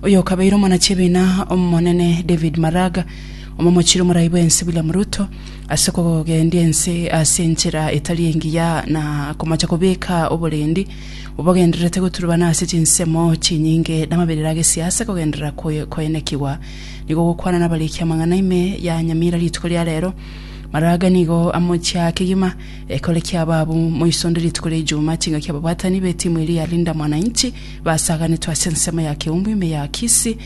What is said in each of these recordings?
Oyokabeire omwanachibiina omonene David Maraga, omomochire omorai bwensi William Ruto ase kogendia ense ase enchera etari engiya na komocha kobeka oborendi obogendererete goturubana ase chinsemo chinyinge namaberero agesiasa kogenderera koenekigwa nigo gokwana nabariki amang'ana ime ya Nyamira rituko ria rero. Maraga nigo amochia kegima ekore kiababu moisonde rituko ria Ijumaa chingaki ababwatani betimu eria ya Linda Mwananchi Basaganetwe ase ensemo ya keumbu ime ya Kisi,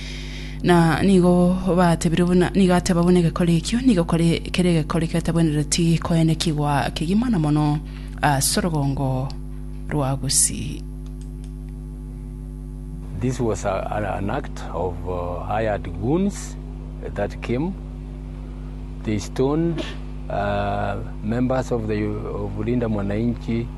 na nigo batebirwe buna nigo ateba buna egekori ekio nigo kore kere egekori ketabwenereti koenekigwa kegima na mono ase orogongo rwa Gusii. This was a, an, an act of uh, hired goons that came. They stoned uh, members of the of Linda Mwananchi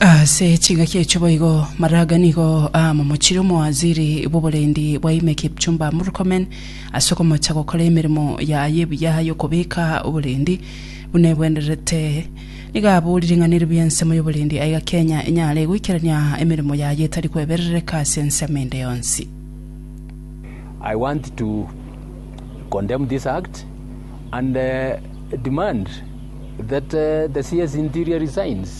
Ase chingaki echio boigo, Maraga nigo aamomochirie omowaziri bw'oborendi bwa ime Kipchumba Murkomen ase okomocha gokora emeremo yaye ebuya y'okobeka oborendi buna ebwenerete. Nigo aboorire ng'a neribwo ensemo y'oborendi aiga Kenya enyare goikerania emeremo yaye etari kweberereka ase ensemo ende yonsi. I want to condemn this act and uh, demand that uh, the CS Interior resigns.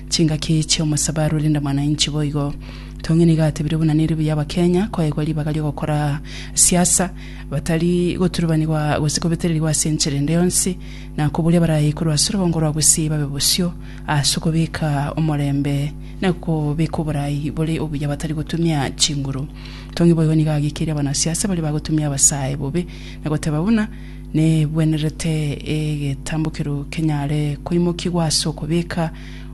Chingaki chi'omosabe arure nda mwananchi boigo. Tong'e nigo atebire buna nere buya abakenya koegwa ribaga ri'ogokora siasa batari goturubanigwa gose kobetererigwa ase enchera ende yonsi na koboria baraye korwa ase orobongo rwa gusii babe bosio ase okobeka omorembe na kobeka oboraai bore obuya batari gotumia chinguru. Tong'e boigo nigo agekeire abanasiasa baria bagotumia abasae bobe na goteba buna Negwenerete egetambokero kenyare koimokigwa ase okobeka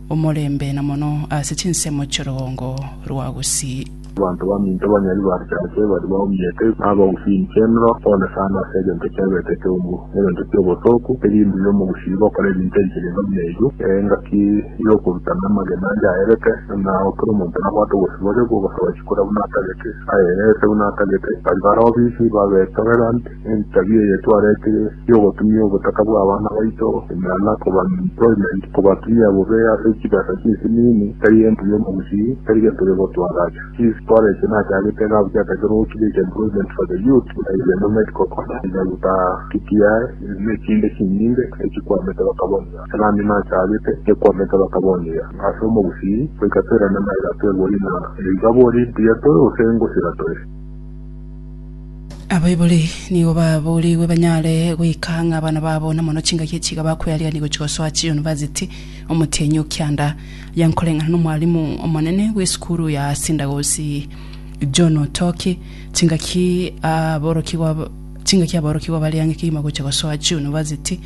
omorembe na mono ase chinsemo chi'orogongo rwa gusii. Abanto baminto banyari barisache baria baumete, na abagusii chenro, pole sana ase egento kiabeete ekeungu, na egento ki'obosooku, erinde uyo omogusii gokora ebinto ebi chirenga buna ebi, ee, engaki y'okoruta na amagena ande aerete, na ao kera omonto nabwate obosiboria bw'ogosaba chikura buna atagete, ayereese buna atagete, baria bare obisi babetorere ande. Entabia eye twaretire y'ogotumia obotaka bw'abana baito imera na koba-employment kobatumia bobe ase chibesa chisimiini, tari gento gionsi gusii, tari gento gionsi twagacha. Chief Twareche nachagete iga abwo chiatakerwe gokiriecha employment for the youth buna Igweno Medical College, Nyaruta, TTI, n'echinde chinyinge echikwamete bakaboniga. Nami nachagete ngekwamete bakaboniga ase omogusii goika toirane na erato ebori na ebibabu ori mbuya tore gose ngosira tore. Abaibori nigo baboorigwe banyare goika ng'a abana babo namono chingaki echi iga bakwerigereria gochia gosoa chiunivasiti. Omotienyi o kianda aye nkoreng'ana n'omwalimu omonene bw'esukuru ya Sindagosi John Otoki, chingaki aborokigwa chingaki aborokigwa bariange kegima gochia gosoa chiunivasiti,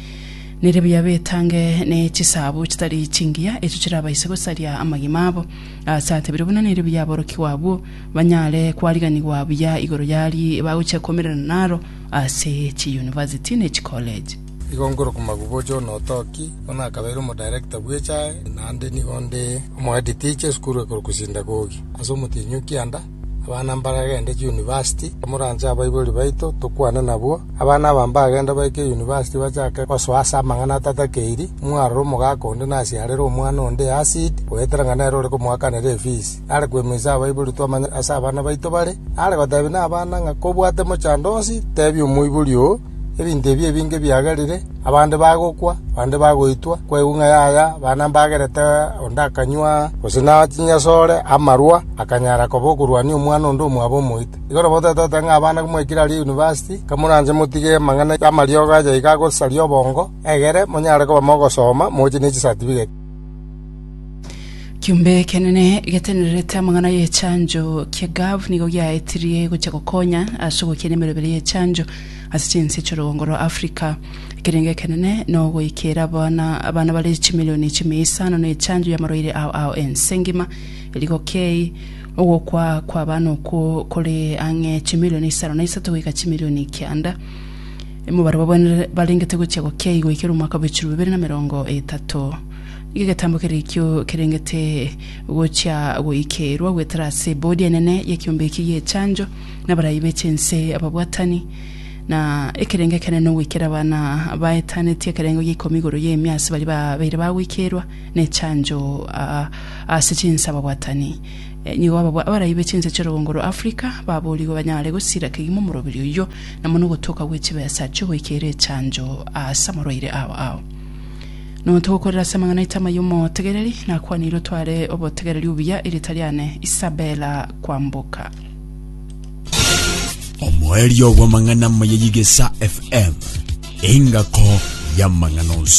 nere buya betange ne chisaabo chitari chingiya echio chirabaise gosaria amagima abo. Ase atebire buna nere buya aborokigwa abwo banyare kwariganigwa buya igoro y'ari bagochia komererana naro ase chiyunivasiti ne chikoleji. Igo nkorokoma Gubojo Onotoki, bono akabeire omodirector bw'echae, naende nigo nde omohead teacher esukuru ekorokwa Sindagogi. Ase omotienyi kianda, abana mbaragende chiyunivasiti, moranche abaibori baito tokwane nabwo. Abana aba mbagende baike yunivasiti bachake gosoa ase amang'ana atatakeiri, mwarora omogaka onde nasiarere omwana onde acid, goetera ng'a nere ore komoakanera efees. are kwemoisa abaibori twamanye ase abana baito bare, are goteebia nabana ng'a kobwate mochando onsi teebia omoibori oo, ebinto ebi ebinge biagerire, abande bagokwa, bande bagoitwa, kwaigwa ng'a yaya abana mbagerete onde akanywa gose na chinyasore, amarwa, akanyara koba okorwania omwana onde omwabo omoite. Igo nabo totoete ng'a abana komoikera aria University, kamoranche motige amang'ana amariogo aye iga agosaria obongo, egere monyare koba mogosoma moche ne chisatifiketi. Kiombe ekenene getenererete amang'ana y'echancho kia Gov nigo giaetirie gochia gokonya ase ogokinia emerobera y'echancho ase chinse chi'orogongo rwa Africa. Ekerengo ekenene nogoikera abana abana bare chimilioni chimia isano na echancho y'amarwaire ao ao ense ngima. Erigo kei, ogokwa kw'abana okwo kore ang'e chimilioni isano na isato goika chimilioni kianda. Mobarabwo barengete gochia gokia igoikera omwaka bw'echirobabere na merongo etato. Nigo egetambo kere ekio kerengete gochia goikeirwa goetera ase Ebodi enene y'ekiombe eki gi'echancho, na abarai be chinse, ababwatani, na ekerengo ekenene ogoikera abana baetaneti ekerengo gia ikomi igoro y'emia ase baria babeire bagoikeirwa nechancho ase chinse ababwatani. Nigo abarai be chinse chi'orogongo rwa Africa baboorigwe banyare gosira kegima omoroberi oyio na mono ogotoka gwe chibesa chi'ogoikeira echancho ase amarwaire ao ao. Notogokorera ase amang'ana aito amaya omotegereri, nakwaneire otware obotegereri obuya erieta riane Isabella kwamboka. Omoerio bw'amang'ana amaya y'Egesaa FM, engako y'amang'ana onsi.